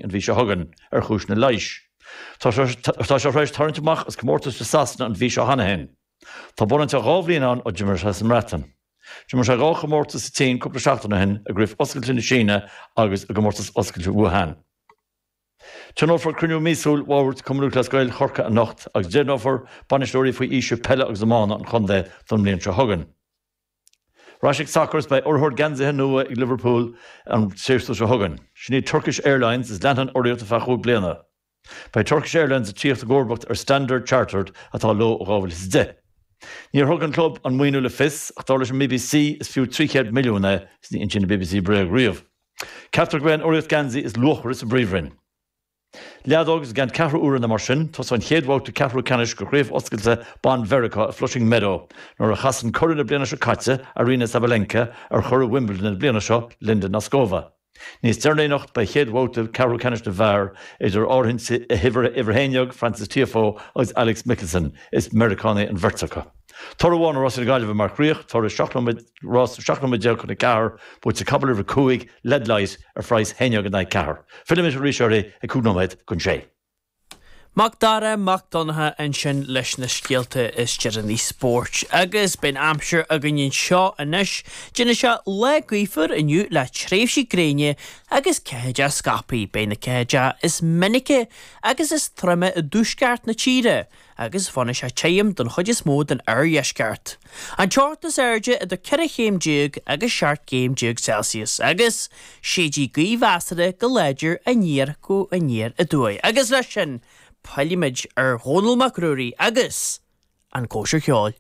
an mhí seo chugainn, ar chúiseanna leighis. Tá sé tar éis tarraingt amach as comórtais i Sasana an mhí seo cheana féin. Tá bunáite dhá bhliain ann ó d'imir sé sa mBreatain. D'imir sé dhá chomórtas sa tSín cúpla seachtain ó shin, i gCraobh Oscailte na Síne agus i gComórtas Oscailte Wuhan. Tionólfar cruinniú míosúil Bhord Cumann Lúthchleas Gael Chorcaí anocht agus deimhneofar bainisteoirí faoi aois Peile agus Iomána an chontae don mbliain seo chugainn. Ar ais ag sacar is beidh urraitheoir geansaithe nua ag Liverpool an séasúr seo chugainn. Sin iad Turkish Airlines is leanfaidh an urraíocht ar feadh cúig bliana. Beidh Turkish Airlines ag tíocht i gcomharbacht ar Standard Chartered atá leo ó 2010. Níor thug an club an maoiniú le fios ach dar leis an bbc is fiú 300 milliún é is ní insíonn an bbc bréag riamh. Ceaptar go mbeidh an urraíocht geansaí is luachmhaire sa bPríomhroinn. Leadóg Is i gceann ceathrú uaire nó mar sin tosóidh an chéad bhabhta ceathrú ceannais de Chraobh Oscailte Ban Mheiriceá i Flushing Meadow nuair a chasann curadh na bliana seo caite, Aryna Sabalenka, ar churadh Wimbledon na bliana seo, Linda Noskova. Níos deireanaí anocht beidh chéad bhabhta ceathrú ceannais na bhfear idir áirithint uimhir a haon déag, Frances Tiafoe agus Alex Michelsen, is Meiriceánaigh an bheirt acu. Toradh amháin ó rásaí na Gaillimhe mar chríoch, toradh seacht nóiméad, Rás 17 nóiméad chun a ceathair, buaite ag capall uimhir a 5 led light ar phraghas haon déag in aghaidh ceathair. Fillimis ar an spórt ag cúig nóiméad chun sé. Mac Dara Mac Donncha ansin leis na scéalta is deireanaí spóirt. Agus beidh an aimsir againn anseo anois. Déanfaidh sé lá gaofar inniu le tréimhsí gréine agus ceathaideacha scaipthe. Beidh na ceathaideacha is minice agus is troime i dtuaisceart na tíre. agus fanfaidh sé tirim den chuid is mó den oirdheisceart. An teocht is airde idir 14 chéim agus 17 chéim Celsius, agus séidfidh gaoth mheasartha go láidir aniar go aniar aduaidh, agus leis sin pillfimid ar Dhónall Mac Ruairí agus An Chóisir Cheoil.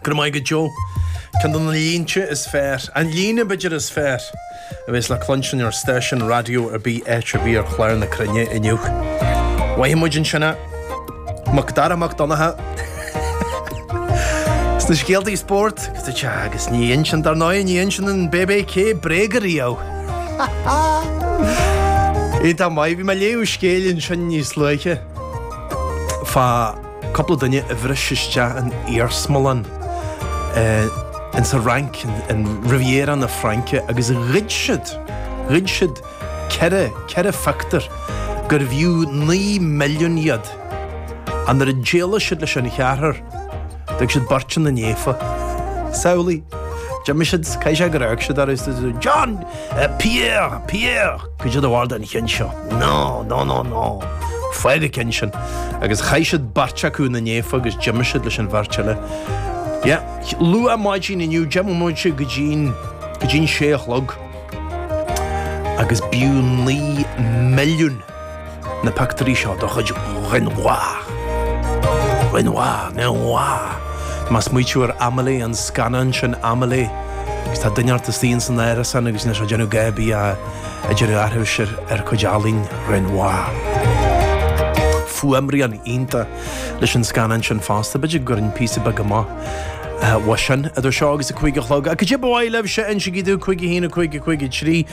Go raibh maith agat go deo. Ceann de na línte is fearr, an líne, b'fhéidir, is fearr a bhéas le cluinstin ar stáisiún raidió ar bith áit ar bith ar chlár na cruinne inniu. Chuala muid ansin é. Macdara Mac Donncha. Sna scéaltaí spóirt, agus ní insíonn dar ndóigh, ní insíonn an bbc bréag ariamh. Dála, bhí mé ag léamh scéilín sin níos luaithe. fá cúpla duine a bhris isteach in iarsmalann in sa Fhrainc, in Riviera na Fraince, agus ghoid siad, ghoid siad ceithre, ceithre phictiúr, gurbh fhiú naoi milliún iad. Ach nuair a d'éalaigh siad leis an cheathrar, D'fhág siad beirt ina ndiaidh. Samhlaigh! D'imigh siad, caithfidh sé gur fhág siad ar fhos iad, John! Pierre! Pierre! Caidé do bharúil den cheann seo. No, no, no, no! Fág na cinn sin! Agus chaith siad beirt acu ina ndiaidh agus d'imigh siad leis an bheirt eile. Yeah. Luath maidin inniu, deich mbomaite go dtí an sé a chlog. Agus b'fhiú naoi milliún. na pictiúirí seo de chuid Renoir. Renoir, Renoir, má smaoiníonn tú ar Amelie, an scannán sin Amelie, agus tá duine bocht istigh ins an árasán agus tá sé ag déanamh gá bídh ag déanamh aithris ar chuid ealaíne Renoir. Fuaimrian iontach leis an scannán sin fosta, b'fhéidir go gcuirfinn píosa beag amach uaidh sin idir seo agus a cúig a chlog. Ach caidé ba mhaith libhse, insigí domh, cúig a haon, a cúig, a cúig a trí,